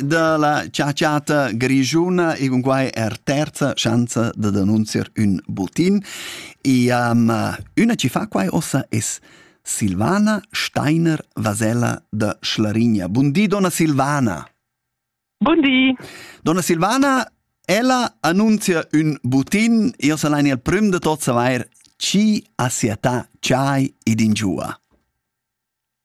dalla ciaciata grigiuna e con quai er terza chance da denunziar un butin. E um, una ci fa quai ossa es Silvana Steiner Vasella da Schlarigna. Buondì, donna Silvana. Buondì. Donna Silvana, ella annunzia un butin, io salain il prim de tot savair chi assiata chai ed ingiua.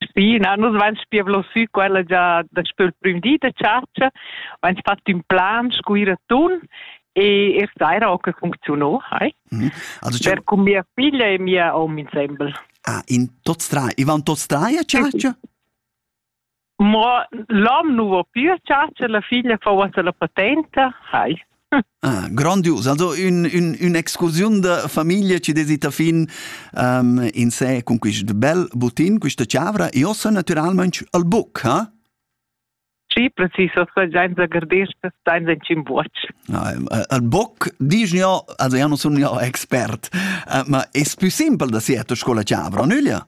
Spi, na, nus vain spievlo sü quella già daspö il prüm di da chatscha, vain fat ün plan scu ir a tun e er saira ho que funcziuno, hai. Mm. Also, per cun mia figlia e mia hom insembel. Ah, in tots trai, i van tots trai a chatscha? Mo l'hom nu vo più a chatscha, la figlia fa uossa la patenta, hai. Ah, grandius, also ün, ün, ün'excursiun da famiglia ci desita fin um, in sé con quist bel butin, questa chavra. Io sono naturalmente al buc, ha? Sì, preciso, senza gardesca, senza cimbuocc. Ah, al buc, dici io, also io non sono io expert, uh, ma è più simple da siete scuola chavra, nüglia?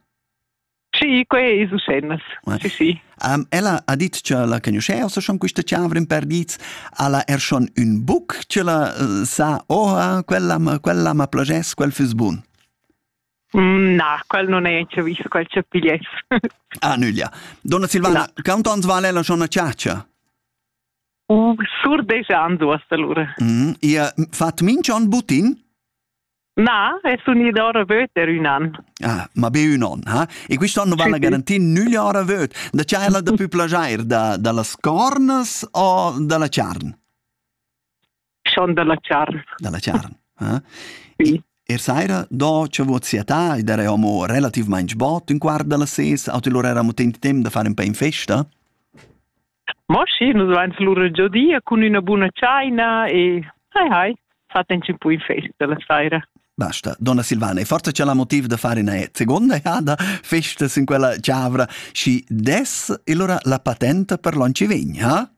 Sì, quei ei su scena. Sì, sì. Um, ella ha dit che la conosceva so schon questa chiavra in perdits alla er schon un buc che la uh, sa oh quella quella ma plagess quel fus bun. Mm, na, quel non è che visto quel che pigliess. ah, nüglia. Donna Silvana, no. quanto ans vale la schon a ciaccia? Uh, sur deja anzu asta allora. Mm, ihr fat min schon butin? Na, è s'unida ora vöt er ün an. Ah, ma be ün on, ha? E quist'on vana garantir nüglia ora vöt. Da cha ella da pü plagiair da, da las cornas o da la charn? Schon da la charn. Da la charn, ha? Sì. Er saira, do che vot siatà, ed era homo relativmaing bot, un quart da las ses, o te lor era mo temp da fare un po in festa? Mo schi, nus vain lura giodia cun üna buna tschaina e hai hai, fatend ün po in festa la saira. Basta. Donna Silvana, è forza c'è la motiv da fare una seconda jada festa in quella ciavra și des allora la patente per l'on ci vegn, ha?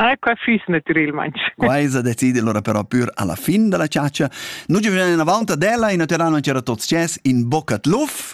Ah, qua füss naturalmente. Quaisa decide allora però pur alla fin della ciaccia. Noi ci veniamo avanti della in terreno c'era tot sces in bocca tluf.